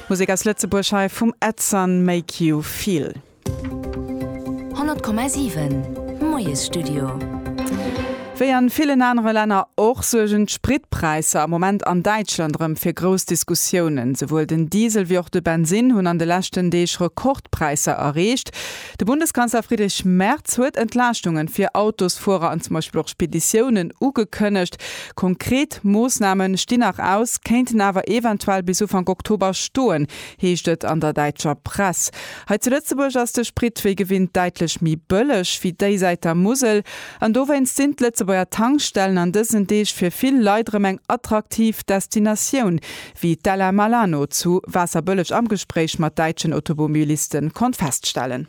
Musek aus Lëtzebuerg hei vum Edson Make You Feel. 100,7 Moiesstudio. Wéi an villen anere Länner och suergen d'Spritpräisser am Moment an Däitschland erëm fir grouss Diskussiounen. Souwuel den Diesel wéi och de Bensinn hunn an de leschten Deeg Rekordpräisser erreecht. De Bundeskanzler Friedrich Merz huet Entlaaschtunge fir Autosfuerer an zum Beispill och Speditiounen ugekënnegt. Konkret Moossname stinn nach aus, kéinten awer eventuell bis Ufank Oktober stoen, heescht et an der däitscher Press. Hei zu Lëtzebuerg ass de Sprit wéi gewinnt däitlech méi bëlleg wéi déisäit der Musel. An dowéinst sinn d'Lëtzebuerger Tankstellen an dësen Deeg fir vill Leit erëm eng attraktiv Destinatioun, wéi d'Ella Malano zu Waasserbëlleg am Gespréich mat däitschen Automobilisten konnt feststellen.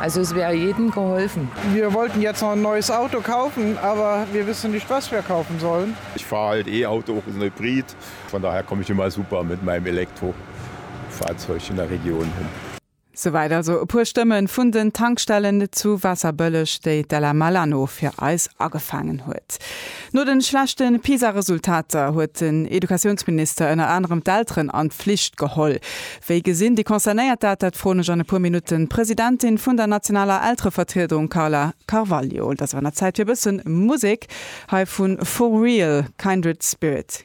Also es wäre jedem geholfen. Wir wollten jetzt noch ein neues Auto kaufen, aber wir wissen nicht was wir kaufen sollen. Ich fahr halt E-Auto, och en Hybrid. Von daher komme ich immer super mit meinem Elektrofahrzeug in der Region hin. Souwäit also e puer Stëmme vun den Tankstellen zu Waasserbëlleg, déi d'Ella Malano fir eis agefaangen huet. No de schlechte PISA-Resultater huet den Educatiounsminister ënner anerem d'Elteren an d'Flicht geholl. Wéi gesinn déi Concernéiert dat? Dat froen ech an e puer Minutten d'Presidentin vun der nationaler Elterevertriedung Carla Carvalho. Et ass awer an der Zäit fir e bësse Musek. Hei vu For Real Kindred Spirit.